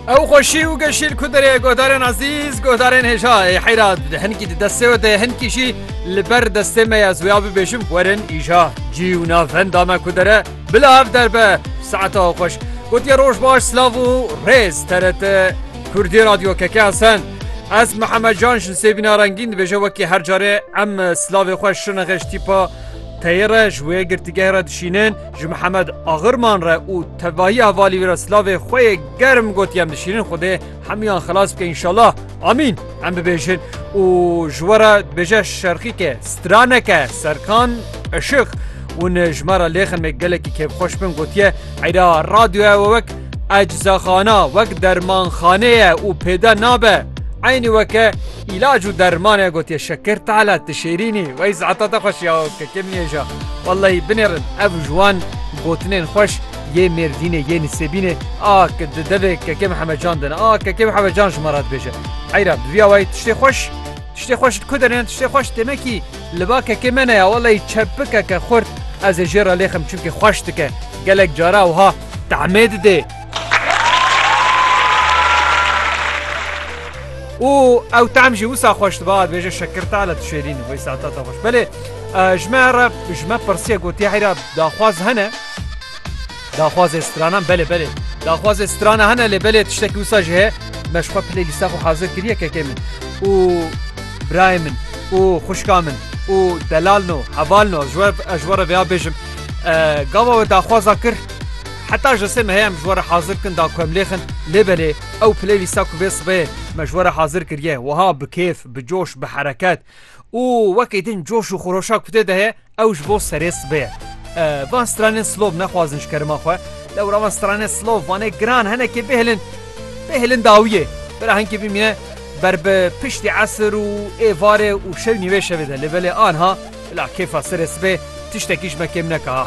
Ew xweşî û geşî li ku derê guhdarên ezîz guhdarên hêja ê heyra hinkî di destê we de hinkî jî li ber destê me ya ziya bibêjim werin îja cî û navenda me ku dere bila ev derbe saeta xweş gotiye roj baş silav û rêz teret Kurdî radyo keke esen. Ez Mihemed Can ji sêbîna rengîn dibêje wekî her carê em silavê xweş şine xeş tîpa teyê re ji wê girtîgehê re dişînin Ji Mihemed Agirman re û tevahî hevalî wî re silavê xwe yê germ gotiye em dişînin Xwedê hemûyan xilas bike înşallah amîn em bibêjin û ji we re dibêje şerxîke straneke serkan eşiq hûn ji me re lêxin me gelekî kêfxweş bin gotiye eyra radyoya we wek eczaxana wek dermanxaneye û pêde nabe eynî weke îlac û dermane gotiye şekir tala tişêrînî wey saeta te xweş ya kekê min êja Wellahî binêrin ev ji wan gotinên xweş yê Mêrdînê yê Nisêbînê a di devê Kekê Mihemed Can de ne. A Kekê Mihemed Can ji me re dibêje. Heyra bi vî awayî tiştê xweş tiştê xweş li ku de ne tiştê xweş têmekî li ba kekê me ne ya wellahî çepik eke xurt ez ê jê re lêxim çimkî xweş dike gelek cara wiha tahmê didê. û ew tehm jî wisa xweş dibe dibêje şekirta li tu şêrîn wê saeta te xweş belê ji me re ji me pirsiye gotiye heyra daxwaz hene daxwazê stranan belê belê daxwazê strana hene lê belê tiştekî wisa ji heye me ji xwe pilê lîsta xwe hazir kiriye kekê min û birayê min û xuşka min û delal no heval no ji we ji we re vêya bêjim gava we daxwaza kir Heta ji sê mehe em ji we re hazir bikin da ku em lêxin, lê belê ew playlîsta ku vê sibê me ji we re hazir kiriye wiha bi kêf, bi coş, bi hereket û wekî din coş û xuroşa ku tê de heye ew ji bo serê sibê ye. Van stranên slov nexwazin ji kerema xwe. Dewra van stranên slov vanê giran henekê bêhilin bêhilin dawiyê. Bira hinkê bimîne ber bi piştî esir û êvarê û şew nîvê şevê de lê belê anha bila kêfa serê sibê tiştekî ji me kêm neke ha.